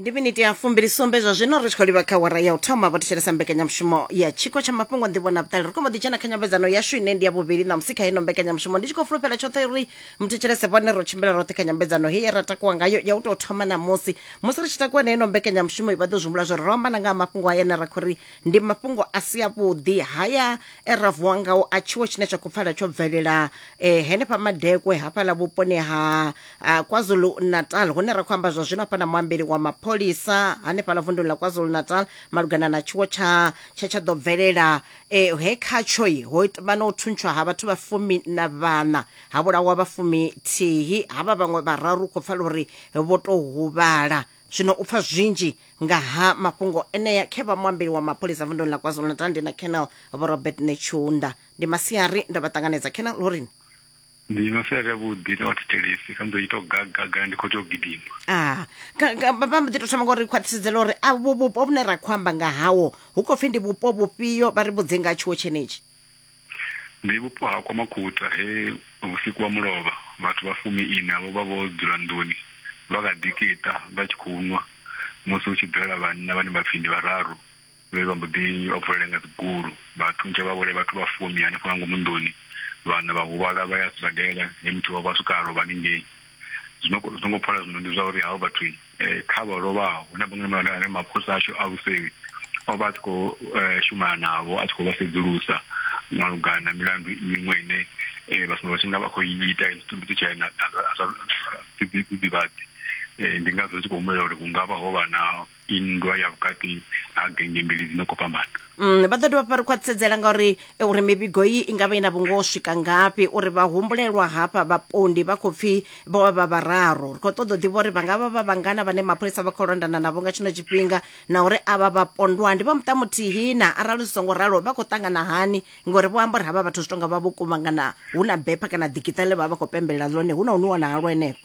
ndi miniti ya fumbilisumbe zwa zwino ri tshi khou livha kha wara ya u thoma vho thetshelesa mbekanyamushumo ya tshiko tsha mafhungo nḓivho na vhuṱali ri khou mbo ḓi dzhena kha nyambedzano yashu ine ndi ya vhuvhili na musi kha ino mbekanyamushumo ndi tshi khou fulufhela tshoṱhe uri muthetshelese vhone ro tshimbila roṱhe kha nyambedzano heyi ye ra takuwa ngayo ya u tou thoma na musi musi ri tshi takuwa na ino mbekanyamushumo vha ḓo zwimbula zwo ri ro ambana nga ha mafhungo haya ane ra khou ri ndi mafhungo a si avhuḓi haya e ra vuwa ngao a tshiwo tshine tsha khou pfala tsho bvelela eh, henefha madekwe hafhaḽa vhuponi ha a kwazulu-natal hune ra khou amba zwa zwino hafha na muambeli wa mapholisa hanefhaḽa vunduni ḽa kwazulu-natal malugana na tshiwo tsha tsha tsha ḓo bvelela eh, he khatshoi ho it- vha na u thuntshwa ha vhathu vha fumi na vhana ha vhulawa vha fumi thihi havha vhaṅwe vhararu khou pfala uri vho tou huvhala zwino u pfa zwinzhi nga ha mafhungo enea khe vha muambeli wa mapholisa vunduni ḽa kwazulu-natal ndi na canal vho robert netshiunda ndi masiari ndo vha ṱanganedza canal lorini Ndi no sia vhuḓi na vhathetshelesi kha mbo ito gagaga ndi khou tea u gidima. Ah, vha mbo ḓi tou thoma ngori khwaṱhisedzela uri a vhu vhupo vhune ra khou amba nga hawo hu khou pfhi ndi vhupo vhufhio vha ri vhudze nga tshiwo tshenetshi. Ndi vhupo ha kwa Makhuta he vhusiku wa mulovha vhathu vha fumi ina vho vha vho dzula nḓuni vha kha ḓi kita vha tshi khou nwa musi hu tshi bvelela vhanna vhane vha pfhi ndi vhararu. Vhe vha mbo ḓi vha vulela nga dzigulu, vha thuntsha vha vhulaya vhathu vha fumi hanefho nga ngomu nḓuni. Vhaṋa vha huvhala vha ya sibadela, he muthihi wavho a swika a lovha haningei. Zwino zwi songo pfala zwino ndi zwa uri havho vhathu kha vha lovhaho, hu na vhaṅwe vhane vha ri mapholisa ashu a vhusevhi o vha a tshi khou shumana navho, a tshi khou vha sedzulusa malugana na milandu miṅwe ine vha sumbedza vha tshi nga vha khou i ita tshiṱumbiti tsha na zwidzidzivhadzi. Ndi ngazwo ri tshi khou humbulela uri hu nga vha ho vha na. nndwa ya vhukati ha genge mbili dzi no khou fhambana Mm, vha ḓo dovha vha ri khwaṱhisedzela ngauri eh, uri mivhigo iyi i nga vha i na vhungoho swika ngafhi uri vha humbulelwa hafha vhapondi vha khou pfi vho vha vha vhararu ri khou ṱoḓa u ḓivha uri vha nga vha vha vhangana vhane mapholisa vha khou londana navho nga tshino tshifhinga na uri avha vhapondwa ndi vha muṱa muthihi na arali zwi songo ralo vha khou ṱangana hani ngori vho amba uri havha vhathu zwi tonga vha vho kuvhangana hu na bepha kana ḓikiṱa ḽe vha vha vha khou pembelela ḽone hu na hune wana halwo henefho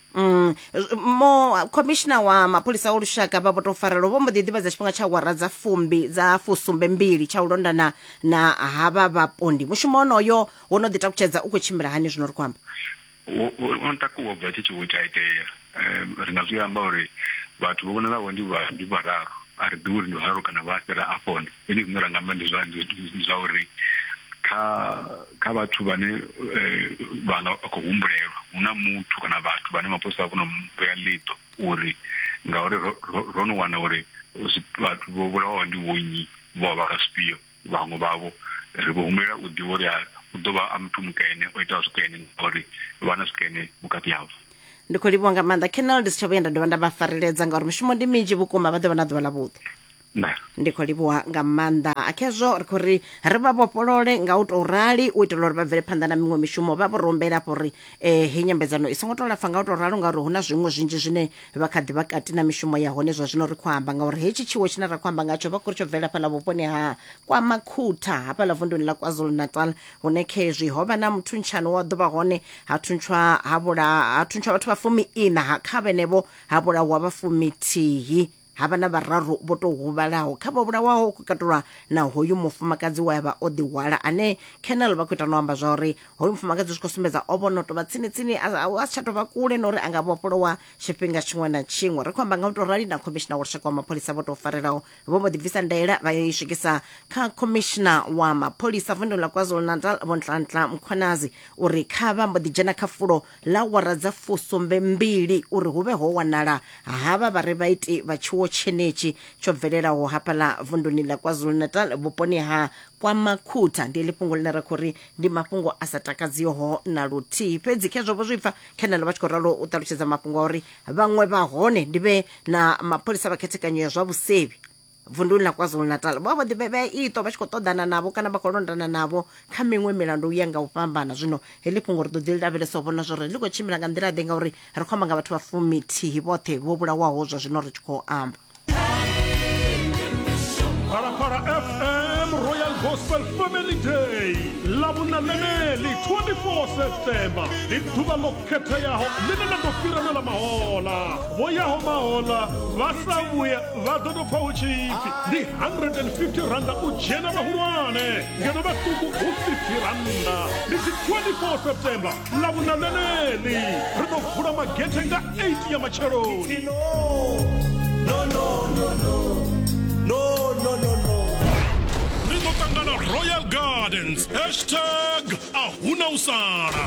Mm, z- mo khomishina wa mapholisa o lushaka vha vho tou farelwa vho mbo ḓi ḓivhadza tshifhinga tsha awara dza fumbi dza fusumbe mbili tsha u londana na havha vhapondi mushumo onoyo wo no ḓi takutshedza u khou tshimbila hani zwino ri khou amba wo- wo- wo no takuwa bva tshi tshi wo tsha itea um ri nga zwi amba uri vhathu vho vhonalaho ndi vha- ndi vhararu a ri ḓivhi uri ndi vhararu kana vha fhira afhone Zwine zwine ra nga amba ndi zwa ndi zwa uri kha kha vhathu vhane vha nga khou humbulelwa hu na muthu kana vhathu vhane mapholisa a vho no vhea ḽiṱo uri ngauri ro no wana uri vhathu vho vhulawaho ndi vhonnyi vho vha vha zwifhio vhaṅwe vhavho ri vho humbulela u ḓivha uri u ḓo vha a muthu mukene o itaho zwikene ngauri vha na zwikene vhukati havho. ndi khou livhuwa nga maanḓa colonel ndi si tsha vhuya nda dovha nda vha fareledza ngauri mishumo ndi minzhi vhukuma vha ḓo vha na ḓuvha ḽa vhuḓi nṋe ndi khou livhuwa nga maanḓa khezwo ri khou ri ri vha vhofholole nga u tou rali u itela uri vha bvele phanḓa na miṅwe mishumo vha vho ri humbela afho uri um heyi nyambedzano i songo tou lapfa nga u tou ralo ngauri hu na zwiṅwe zwinzhi zwine vha kha ḓi vha kati na mishumo ya hone zwa zwino ri khou amba ngauri hetshi tshiwo tshine ra khou amba ngatsho vha khou ri tsho bvela fhaḽa vhuponi ha kwa makhutha hafhaḽa vunduni ḽa kwazulu natal hune khezwi ho vha na muthuntshano wa ḓuvha hone ha thuntshwa ha vhula ha thuntshwa vhathu vha fumi ina ha kha vhenevho ha vhulawa vha fumithihi ha vha na vhararu vho tou huvhalaho kha vho vhulawaho ku katulwa na hoyu mufumakadzi we a vha o ḓihwala ane Colonel vha khou ita no amba zwa uri hoyu mufumakadzi zwi khou sumbedza o vho no tou vha tsini tsini a si tsha tou vha kule na uri a nga vhofholowa tshifhinga tshiṅwe na tshiṅwe ri khou amba nga u tou rali na khomishina wa lushaka wa mapholisa vho tou farelaho vho mbo ḓi bvisa ndaela vha yo i swikisa kha khomishina wa mapholisa vundu la kwazulu natal vho ntlantla mkhwanazi uri kha vha mbo ḓi dzhena kha fulo ḽa awara dza fusumbe mbili uri hu vhe ho wanala havha vha re vhaiti vha tshiwo tshenetshi tsho bvelelaho hafhaḽa vunduni ḽa KwaZulu-Natal vhuponi ha KwaMakhutha. Ndi ḽi fhungo ḽine ra khou ri ndi mafhungo a sa takadziho na luthihi. Fhedzi khezwo vho zwi pfa, Khenelo vha tshi khou ralo u ṱalutshedza mafhungo a uri vhaṅwe vha hone ndi vhe na mapholisa vha khethekanyo ya zwa vhusevhi. vunduni ḽa kwazulu-natal vho vha vho ḓivhevhea iṱo vha tshi khou ṱoḓana navho kana vha khou londana navho kha miṅwe milandu u ya nga u fhambana zwino heḽi fhungo ri ḓo ḓi lavhelesa u vhona zwori ḽi khou tshimbila nga nḓila ḓe ngauri ri khou amba nga vhathu vha fumithihi vhoṱhe vho vhulawaho zwa zwino ri tshi khou amba Phalaphala FM Royal Gospel Family Day ḽa vhuna ḽeneli 24 September ndi ḓuvha ḽo khetheaho ḽine ḽa ḓo fhira na ḽa mahola vho yaho mahola vha sa vhuya vha ḓo tou pfa hu tshi pfi ndi 150 randa u dzhena vhahulwane ngeno vhaṱuku hu 50 randa ndi tshi 24 september ḽa vhuna ḽeneḽi ri ḓo vula magethe nga 8 ya matsheloni no, no, no, no. No, no, no, no. ri ḓo ṱangana royal gardens hashtag a huna u sala